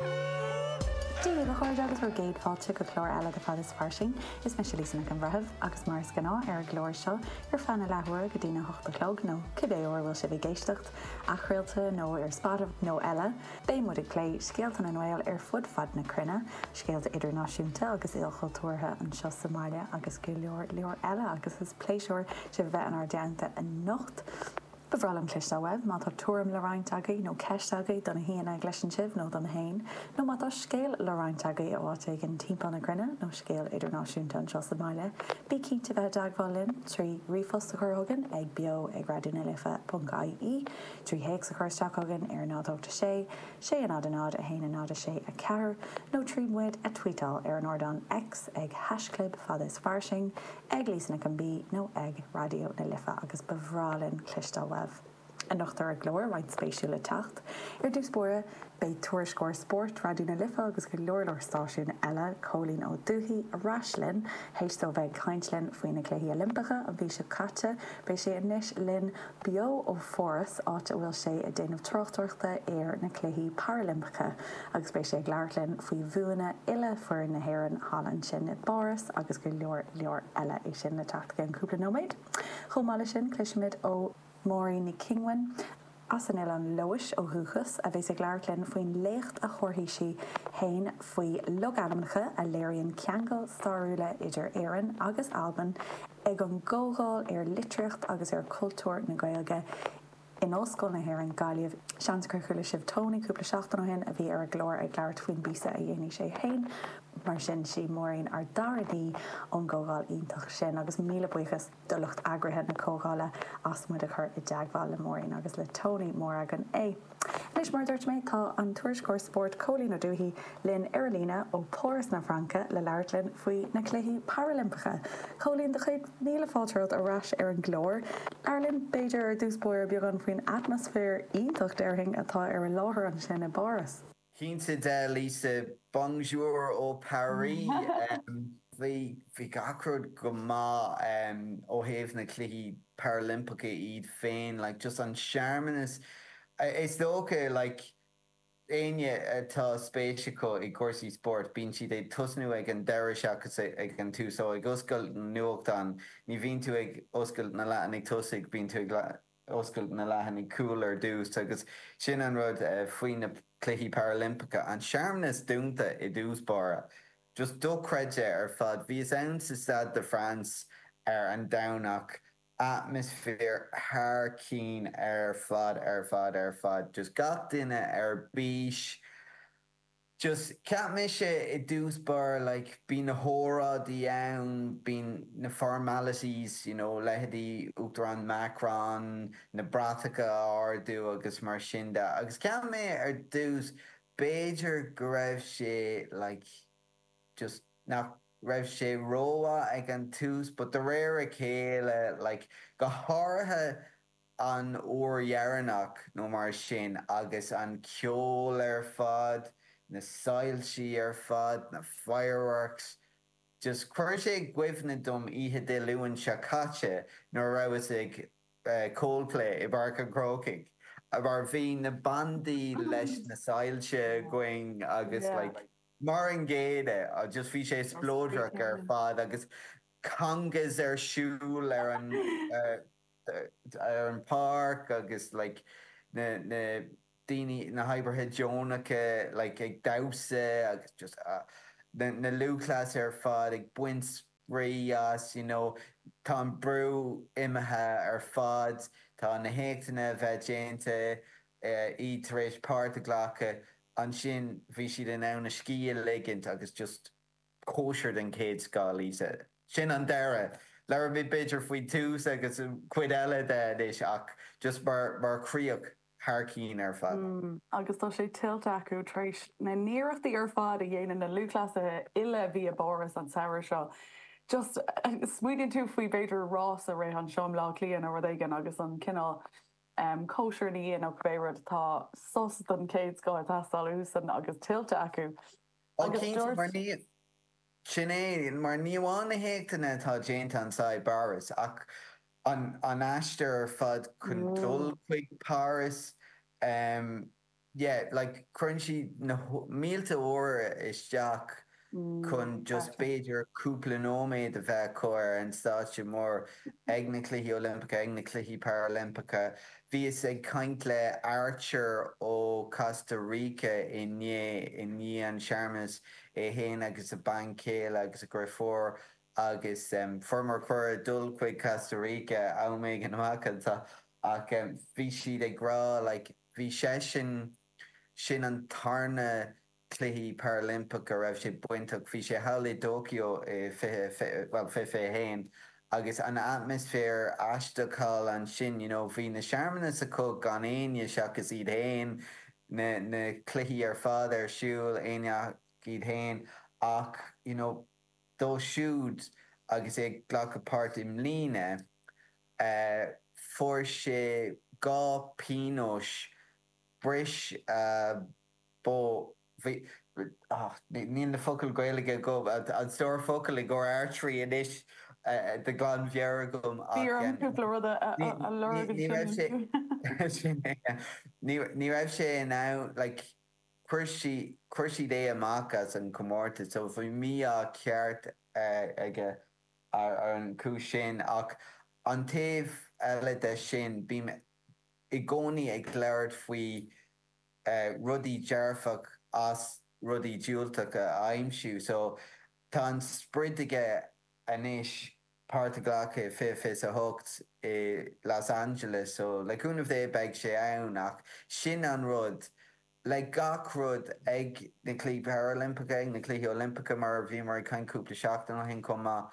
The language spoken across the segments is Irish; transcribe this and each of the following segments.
Dia dhaoibh a chairde agus bhur gcéad fáilte go clár eile de Fad is Fairsing. Is mise Lisa Nic an Bhreithimh agus mar is gnáth ar an gclár seo ar feadh na leathuaire go dtí a hocht a chlog nó cibé uair a bhfuil sibh ag éisteacht, athchraolta nó ar Spotify nó eile, beidh muid ag plé scéalta na nGael ar fud fad na cruinne, scéalta idirnáisiúnta agus ilchultúrtha, anseo sa mbaile agus go leor, leor eile agus is pléisiúr sibh a bheith inár dteannta anocht. Ba bhreá linn cloisteáil uaibh má tá tuairim le roinnt agaibh, nó ceist agaibh do na haíonna a chloiseann sibh nó dom féin, nó má tá scéal le roinnt agaibh ó áit éigin timpeall na cruinne, nó scéal idirnáisiúnta anseo sa mbaile, bí cinnte bheith i dteagmháil linn trí ríomhphost a chur chugainn ag beo ag raidió na life ponc ie, trí théacs a chur isteach chugainn ar a náid 8 6 6 0 0 1 0 6 4, nó tríd muid a tweetáil ar an ardán X ag haischlib fad is fairsing, ag Lisa Nic an B nó ag Raidió na Life agus ba bhreá linn cloisteáil uaibh. Anocht ar an gclár roinnt spéisiúil le teacht. Ar dtús báire, beidh tuairisceoir spóirt Raidió na Life agus go leor leor stáisiún eile, Cóilín Ó Dufaigh, ar ais linn. Théis dó bheith ag caint linn faoi na Cluichí Oilimpeacha an mhí seo caite, beidh sé ar ais linn Beo ó Pháras, áit a bhfuil sé ag déanamh tráchtaireachta ar na Cluichí Parailimpeacha, agus beidh sé ag labhairt linn faoi bhuanna uile fhoireann na hÉireann thall ansin i bPáras agus go leor leor eile. É sin le teacht i gceann cúpla nóiméad. Chomh maith leis sin, cloisfimid ó Máirín Nic Cionghuin, as an Oileán Leodhais ó dhúchas, a bheas ag labhairt linn faoin léacht a thabharfaidh sí fhéin faoi logainmneacha a léiríonn ceangail stairiúla idir Éirinn agus Albain. Ag an gcomhdháil ar litríocht agus ar chultúr na Gaeilge in Ollscoil na hÉireann, Gaillimh, seans gur chuala sibh Tony cúpla seachtain ó shin, a bhí ar an gclár ag labhairt faoin bpíosa a dhéanfaidh sé féin. Mar sin, 'sí Máirín an dara haoi ón gcomhdháil iontach sin, agus míle buíochas do lucht eagraithe na comhdhála as muid a chur i dteagmháil le Máirín agus le Tony, mór againn é! Anois, mar a dúirt mé, tá an tuairisceoir spóirt Cóilín Ó Dufaigh linn ar an líne ó Páras na Fraince le labhairt linn faoi na Cluichí Parailimpeacha. Cóilín, tá céad míle fáilte romhat ar ais ar an gclár. Labhair linn, b'fhéidir, ar dtús báire beagán faoin atmaisféar iontach déarfainn atá ar an láthair ansin i bPáras. Cinnte de, Lisa. Bonjour ó Paris. Bhuel gach rud go maith ó thaobh na Cluichí Parailimpeacha iad féin, like just an searmanas, is dócha like éinne atá spéis acu i gcúrsaí spóirt, bíonn siad ag tosnú ag an deireadh seachas ag an tús. So ag oscailt an nuachtáin, ní bhíonn tú ag oscailt na leathanaigh tosaigh, bíonn tú ag. Oscail na leathanaigh cúil ar dtús agus sin an rud faoi na Cluichí Parailimpeacha, an searmanas dúnta i dtús báire. Just dochreidte ar fad. Bhíos ann sa Stade de France ar an Domhnach, atmaisféar thar cinn ar fad ar fad ar fad. Just gach duine ar bís. just cheap mé, sé i dtús báire like bíonn na hóráidí ann bíonn na formalities you know leithéidí Uachtarán Macron na bratacha á n-ardú agus mar sin de agus cheap mé ar dtús b'fhéidir go raibh sé like just nach raibh sé rómhaith ag an tús but de réir a chéile like go háirithe an uair dheireanach nó mar sin agus an ceol ar fad, na soilsí ar fad, na fireworks, just chuir sé i gcuimhne dom oíche Dé Luain seo caite nuair a rabhas ag Coldplay i bPáirc an Chrócaigh mar bhí na bandaí leis na soilsí againn agus like mar an gcéanna just bhí sé spleodrach ar fad agus congas ar siúl ar an ar an páirc agus like na na daoine na hoibrithe deonacha like ag damhsa agus just ah na na lúthchleasaithe ar fad ag baint spraoi as you know tá an brú imithe ar fad tá na héachtanna a bheith déanta iad tar éis páirt a ghlacadh ansin bhí siad in ann a scíth a ligint agus just Cóisir den chéad scoth, Lisa. Sin an deireadh. Labhróimid b'fhéidir faoin tús agus an chuid eile de anois ach just mar chríoch thar cinn ar fad. Agus tá sé tuillte acu tar éis na n-iarrachtaí ar fad a dhéanann na lúthchleasaithe uile a bhí i bPáras an samhradh seo. Just, smaoiníonn tú faoi b'fhéidir rás a rith anseo i mBleá Cliath nó rud éigin agus an cineál em cóisir ina dhiaidh nó cibé rud, tá sos den chéad scoth ag teastáil uathusan agus tuillte acu. Ó cinnte. Sin é, mar ní amháin na héachtanna atá déanta anso i bPáras, ach an aistear ar fad chun dul chuig Páras, yeah, like, cuireann siad na mílte uair isteach chun just b'fhéidir cúpla nóiméad a bheith acu ar an stáitse mór, ag na Cluichí Oilimpeacha, ag na Cluichí Parailimpeacha, Bhíos ag caint le Archer ó Costa Rica inné i ndiaidh an searmanais, é fhéin agus a bhean chéile agus a dhriofúr agus fuaireamar cuireadh dul chuig Costa Rica am éigin amach anseo ach bhí siad ag rá like bhí seisean, sin an tarna Cluichí Parailimpeacha a raibh sé bainteach, bhí sé thall i dTóiceo i 2020, 2021 agus an atmaisféar aisteach thall ansin, you know, bhí na searmanais acu gan éinne seachas iad fhéin, na, na cluichí ar fad ar siúl gan éinne ach iad fhéin ach, you know, dó siúd agus é ag glacadh páirt i mbliana, eh, fuair sé dhá pionóis, bhris a. bó, bhí, och, níl na focail Ghaeilge agam, an stór focal i gcomhair artery anois de ghlanmheabhair agam ach em ní raibh sé, sin é, ní raibh sé in ann like chuir sí, chuir siad é amach as an comórtas so bhí mí-ádh ceart aige ar an gcúis sin ach an taobh eile de sin bím i gcónaí ag labhairt faoi rudaí dearfach as rudaí diúltach a aimsiú. So tá an sprid aige anois páirt a ghlacadh i fiche fiche a hocht i Los Angeles. So le cúnamh Dé beidh sé ann ach sin an rud, le gach rud ag na Cluichí Parailimpeacha, ag na Cluichí Oilimpeacha mar a bhíomar ag caint cúpla seachtain ó shin chomh maith,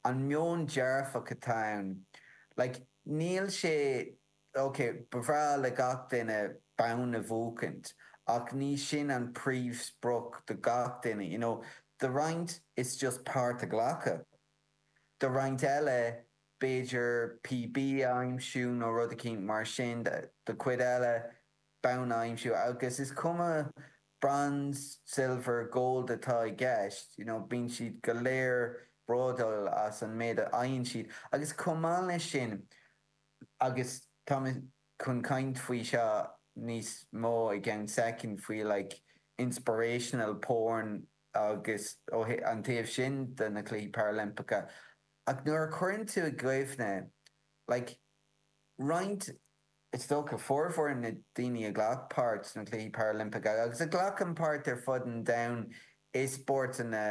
an meon dearfach atá ann, like níl sé. OK, ba bhreá le gach duine bonn a bhuachaint, ach ní sin an príomhsprioc do gach duine. You know, do roinnt, it's just páirt a ghlacadh. Do roinnt eile, b'fhéidir PB a aimsiú nó rud eicínt mar sin. Do chuid eile, bonn a aimsiú. Agus is cuma bronze, silver, gold atá i gceist, you know, bíonn siad go léir bródúil as an méid a fhaigheann siad. Agus chomh maith leis sin, agus tá mé chun caint faoi seo níos mó i gceann soicind, faoi like inspirational porn agus an taobh sin de na Cluichí Parailimpeacha ach nuair a chuireann tú i gcuimhne like roinnt, is dócha, formhór na daoine a ghlac páirt sna Cluichí Parailimpeacha agus a ghlacann páirt ar fud an domhain sna spórtanna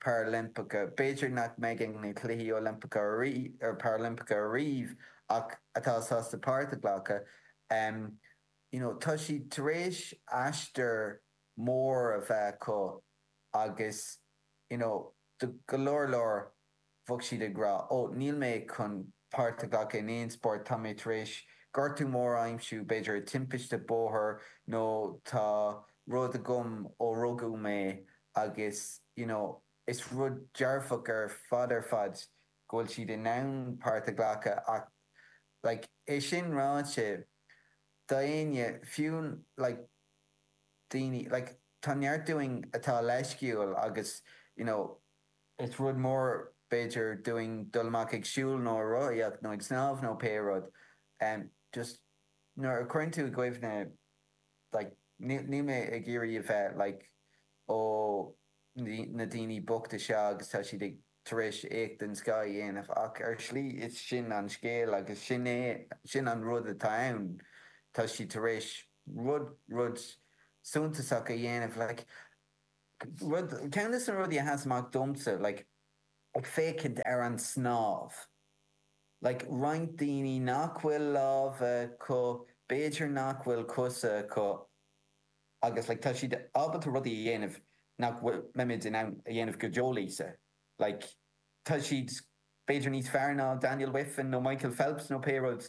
Parailimpeacha. B'fhéidir nach mbeidh ag na Cluichí Oilimpeacha, Parailimpeacha ariamh ach atá sásta páirt a ghlacadh. You know, tá siad tar éis aistear mór a bheith acu agus, you know, do go leor leor, bheadh siad ag rá, ó, níl mé chun páirt a ghlacadh in aon spórt, tá mé tar éis gortú mór a aimsiú, b'fhéidir i timpiste bóthair nó tá rud agam ó rugadh mé Agus you know is rud dearfach ar fad ar fad go bhfuil siad in ann páirt a ghlacadh ach like é sin ráite, do éinne, fiú like daoine, like tá neart dúinn atá leisciúil agus you know is rud mór b'fhéidir dúinn dul amach ag siúl nó ag rothaíocht nó ag snámh nó pé rud, em just nuair a chuireann tú i gcuimhne. like níl mé ag iarraidh a bheith like ó na daoine bochta seo agus tá siad tar éis éacht den scoth a dhéanamh ach ar shlí is sin an scéal agus sin é sin an rud atá ann tá siad tar éis rud rud suntasach a dhéanamh like rud ceann de na rudaí a sheas amach domsa like ag féachaint ar an snámh. Like roinnt daoine nach bhfuil lámha acu, b'fhéidir nach bhfuil cosa acu agus like tá siad ábalta rudaí a dhéanamh nach mbeimis in ann a dhéanamh go deo, Lisa. Like tá siad b'fhéidir níos fearr ná Daniel Wiffen nó Michael Phelps nó pé rud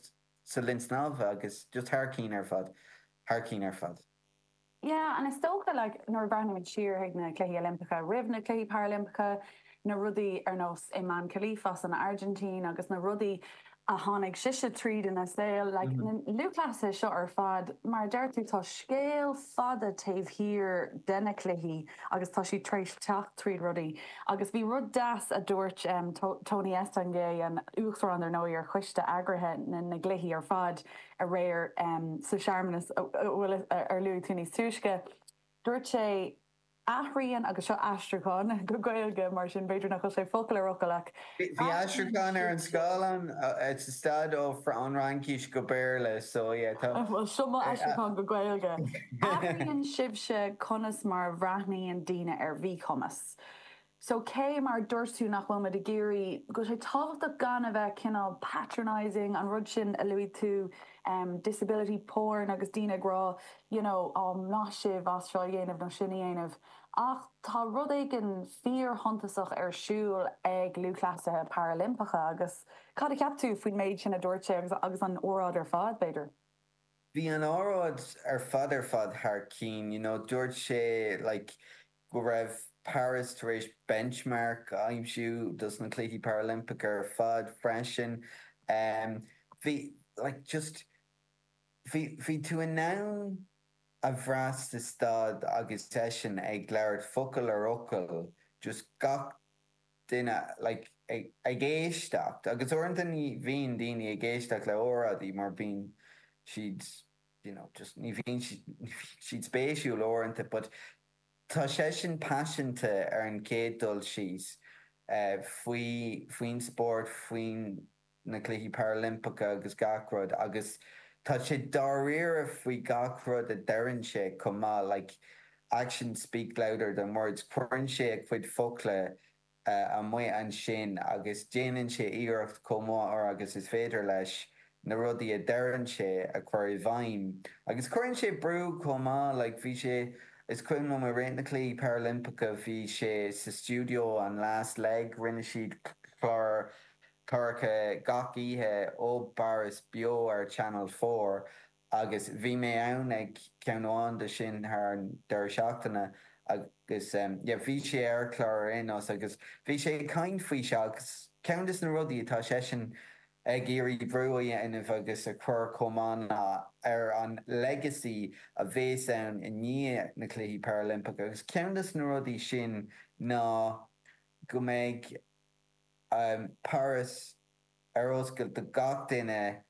sa linn snámha agus just thar cinn ar fad, thar cinn ar fad. Yeah, and is dócha, like, nuair a bhreathnaímid siar chuig na Cluichí Oilimpeacha roimh na Cluichí Parailimpeacha, na rudaí ar nós Imane Khelif as an Airgintín agus na rudaí a tháinig sise tríd ina saol, like, na lúthchleasaithe seo ar fad, mar a deir tú, tá scéal fada taobh thiar de na cluichí agus tá siad tar éis teacht tríd rudaí. Agus bhí rud deas a dúirt Tony Estanguet, an uachtarán, ar ndóigh, ar choiste eagraithe na gcluichí ar fad, Aréir, sa searmanas ar luaigh tú níos túisce, dúirt sé athraíonn, agus seo aistriúchán go Gaeilge, mar sin b'fhéidir nach bhfuil sé focal ar fhocal, ach bhí aistriúchán ar an scáileán, sa staid ón bhFraincis go Béarla, so yeah, tá. Bhuel, seo mo aistriúchán go Gaeilge. Athraíonn sibhse conas mar a bhreathnaíonn daoine ar mhíchumas. So cé mar a dúirt tú, nach bhfuil muid ag iarraidh, go bhfuil sé tábhachtach gan a bheith cineál patronising, an rud sin a luaigh tú, disability porn agus daoine ag rá you know oh maith sibh as seo a dhéanamh nó sin a dhéanamh. Ach tá rud éigin fíorshuntasach ar siúl ag lúthchleasaithe parailimpeacha agus cad a cheap tú faoin méid sin a dúirt sé agus agus an óráid ar fad, b'fhéidir? Bhí an óráid ar fad ar fad thar cinn, you know dúirt sé like go raibh Paris tar éis benchmark a aimsiú dos na Cluichí Parailimpeacha ar fad freisin. Bhí, like, just, bhí, bhí tú in ann a bhrath sa staid agus eisean ag labhairt focal ar fhocal, just gach duine, like, ag, ag éisteacht. Agus uaireanta ní bhíonn daoine ag éisteacht le óráidí mar bíonn siad. you know, just, ní bhíonn siad spéisiúil uaireanta but tá seisean paiseanta ar an chéad dul síos faoi, faoin spórt, faoi na Cluichí Parailimpeacha agus gach rud agus tá sé dáiríre faoi gach rud a deireann sé chomh maith, like, actions speak louder than words, cuireann sé a chuid focla amuigh ansin agus déanann sé iarracht, chomh maith agus is féidir leis, na rudaí a deireann sé a chur i bhfeidhm. Agus cuireann sé brú, chomh maith. Like, bhí sé, is cuimhin liom, i rith na Cluichí Parailimpeacha, bhí sé sa stiúideo, an Last Leg, rinne siad clár cláracha gach oíche ó bPáras beo ar Channel Four, Agus bhí mé ann ag ceann amháin de sin thar an deireadh seachtaine agus yeah bhí sé ar chlár ar aon nós agus bhí sé ag caint faoi seo agus ceann des na rudaí atá seisean ag iarraidh brú a dhéanamh agus a chur chomh maith ná ar an legacy a bhéas ann i ndiaidh na Cluichí Parailimpeacha agus ceann des na rudaí sin ná go mbeidh Páras ar oscailt do gach duine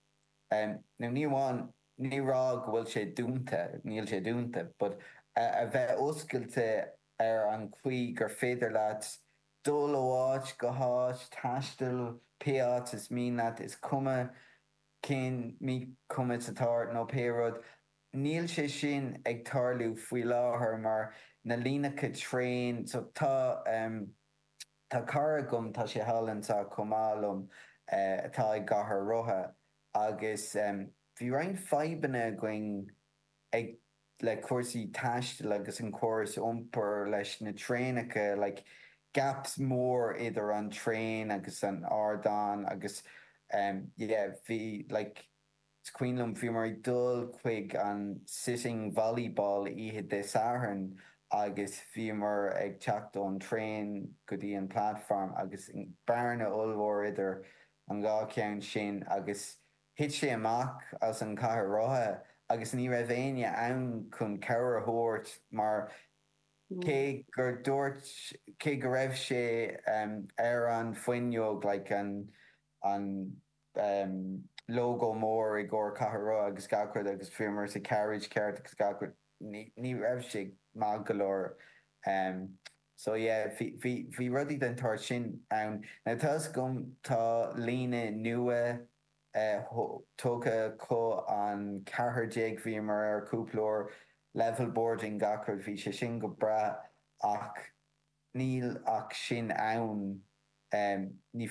nó ní amháin ní ag rá go bhfuil sé dúnta, níl sé dúnta, but a bheith oscailte ar an chaoi gur féidir leat dul ó áit go háit, taisteal pé áit is mian leat, is cuma cén míchumas atá ort nó pé rud. Níl sé sin ag tarlú faoi láthair mar na líneacha traen, so tá. Tá cara agam, tá sé thall anso chomh maith liom, atá i gcathaoir rotha agus bhí roinnt fadhbanna againn ag, le cúrsaí taistil agus an córas iompair leis na traenacha, like gaps mór idir an traein agus an t-ardán agus yeah, bhí like, Is cuimhin liom, bhíomar ag dul chuig an Sitting Volleyball oíche Dé Sathairn agus bhíomar ag teacht ón traein go dtí an platform agus bearna ollmhór idir an dhá cheann sin agus thit sé amach as an chathaoir rotha agus ní raibh éinne ann chun cabhair a thabhairt mar cé gur dúirt, cé go raibh sé ar an bhfuinneog like an, an. lógó mór i gcomhair cathaoir rotha agus gach rud agus bhíomar sa carriage ceart agus gach rud, ní raibh sé maith go leor. So yeah, bhí rudaí den tsórt sin ann. Now tá 'fhios agam, tá líne nua curtha acu, an ceathair déag, bhíomar air cúpla uair, level boarding gach rud, bhí sé sin go breá ach níl ach sin ann, ní.